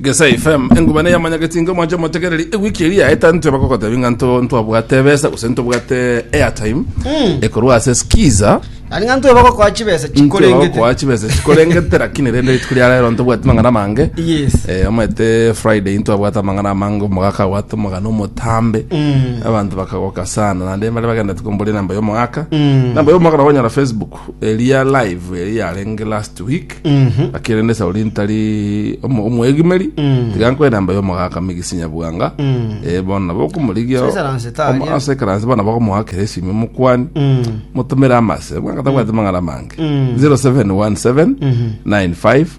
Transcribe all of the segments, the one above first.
Gesa FM, engumana eyamanyageti inga omwancha omotegereri, ewiki eri yaeta ntwe bakogotebi ng'a nto ntwabwate ebesa gose ntobwate airtime ekorwa ase skiza Ari ng'a ntwe bagokoa chibesa ntwe chikorengete. bagokoa chibesa chikorengete lakini rende rituko ria rero ntobwati mang'ana mange Yes. Eh, omanyete friday ntwabwate amang'ana amange omogaka abwate omogana omotambe abantu bakagoka sana naende mbare bagenderete komboria namba ya omogaka namba ya omogaka nabo onyora facebook eria live eri yarenge last week Mhm. lakini rende sauri ntari omo- omwegimeri Mm. tiga nkoe namba ya omogaka migisinya bwanga Mm. Eh, bono nabo okomorigia So esaranse taria. ase ekeranse bono nabo okomogakera esimi omokwani Mm. motumire amase bwanga tabwate mang'ana amange Mm. 0717 95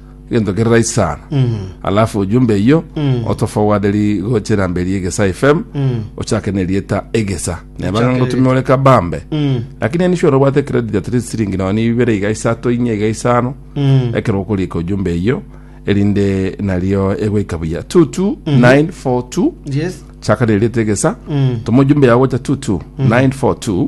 gento kerai sana alafu ujumbe iyo otofowaderi gocha enamba eri egesa fm ochake nerieta egesa nebanga Ochake ngotume ore kabambe lakini eni shore obwate credit at least siringi noni ibere iga isato inya iga isano ekero okorika ujumbe iyo erinde nario egoika buya 22942 yes chaka nerieta egesa toma ujumbe yago gocha 22942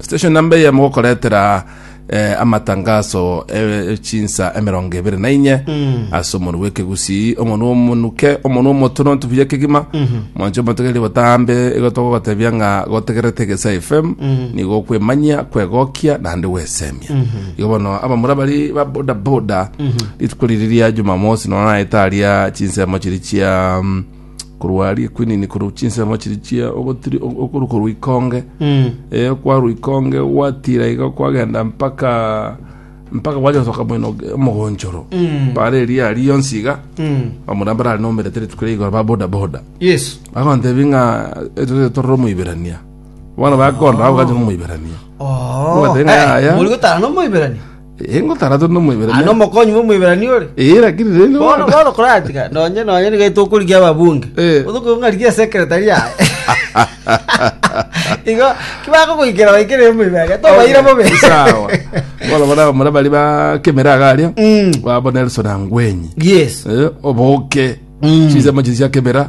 Station namba eye mogokoretera eh, amatangaso eh, chinsa emerongo ebere na inye ase omonu bw'ekegusii omonu omonuke omonu omotono ntubuya kegima mwancho omotegeri botambe igo togogotebia ng'a gotegerete egesa fm nigo okwemanyia kwegokia naende gwesemia igo bono abamura bari ba bodaboda rituko riri ria jumamosi nonya naetaria chinsemo chiri chia mm, korwa aria equinini korwa chinsemo chiria chia ogotiri o- okoru korwa ikonge Mm. eh, kwarwa ikonge gwatira iga kwagenda mpaka mpaka gwacha gosoka mwino omogonchoro Mm. bare eria ari yonsi iga Mm. bamura mbara ari nomerete rituko ria igoro ba boda boda Yes. bagontebi ng'a etorere torore omoiberania bono bakonda bagokacha omoiberania Oh. Mwatenga Eh, yaya. Muri gotara no moiberani. Engo tarato na omoibere. Aa, nomokonyi bw'Omoiberania ore. Eh, lakini rende Bono bono. bono koratiga nonye nonye niga tokorigia ababunge Eh. otoke ng'arigia secretary yaye igo kibakogoikera baikere omoibere tobaira bobe Sawa. Bono bono abamura bari ba kemera agaria. Mm. Babo Nelson Angwenyi. yes Eh, oboke. Mm. Chinsemo chiri chia kemera.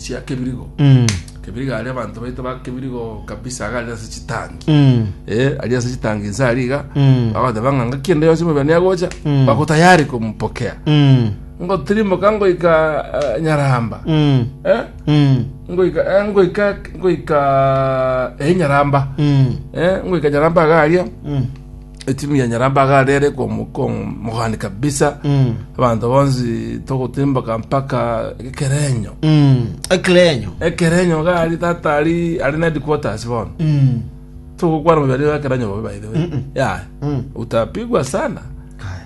sia kebirigo Mm. kebirigo aria abanto baito ba kebirigo kabisa aga ari ase chitangi Mm. eh ari ase chitangi nsa ari iga Mm. bagoteba ng'a ng'aki ende yonsi omobene agocha Mm. bagotayari komupokea Mm. ngotirimoka ngoika eh, nyaramba Mm. eh Mm. ngoika eh, ngoika ngoika eh nyaramba Mm. eh ngoika nyaramba aga aria Mm. Etimu ya Nyarambaga aria ere komogani kabisa Mm. abanto bonsi togotimboka mpaka ekerenyo Mm. Ekirenyo. ekerenyo gari tata ari ari na headquarters bono Mm. togokwana moberi wa ekerenyo bobe by the way Mm-mm. ya Mm. utapigwa sana Kaya.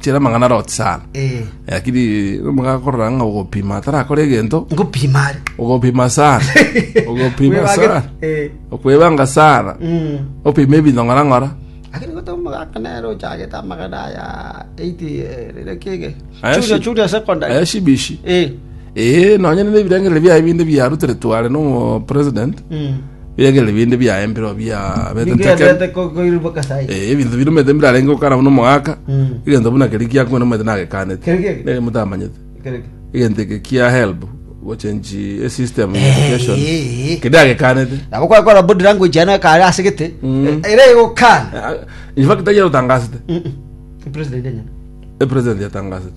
Chera amang'ana aroti sana. Eh. Lakini omoga akorora ng'a ogopima atarakora egento, Ngopima are. ogopima sana. Ogopima Kwebage- sana. Eh. Okwebanga sana. Mm. Opima ebinto ng'ora ng'ora. Lakini gote omogaka nere ochagete amagana aya 80 eh, rire kege. Aya Churia shi- churia secondary. Aya shibishi. Eh. Eh, nonye nende ebirengereri biaye binde biarutere tware no president. Mm. Biegere binde biaye mbiro biabete Nigo nteke. yatete ko- koirwa kasai. Eh, ebinto birumete mbirarenge gokana buna omogaka Mm. egento buna keri giakwana omanyete nagekanete Keri geke? nere motamanyete Kereke. egento eke kia help gochenchi esystem ya education Eh, eh. kedagekanete Nabo kwakora body language yana kare asegete. Mm. Eh, Ere gokana. infact ayerotangasete Mm-mm. President enyene. epresident yatangasete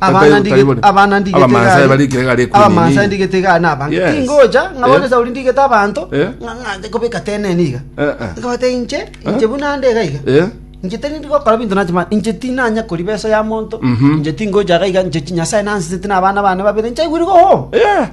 Abana ndige- abana ndigete Abamansa gari. bari ikere gari ekumi Abamansa nini. ndigete gari na abanto. Yes. Tingocha, ng'a Eh. bono Sauli ndigete abanto, Eh. ng'a- ng'a nche kobeka teneni iga. Eh, eh. Nkabata inche, inche buna nde iga iga. Eh? Inche teri ndi gokora binto nache ma- inche tinanya kori besa ya monto. Mhm. Inche tingocha iga iga, inche chi Nyasae nansesete na abana bane babere, nchaigwire iga home. Yeah.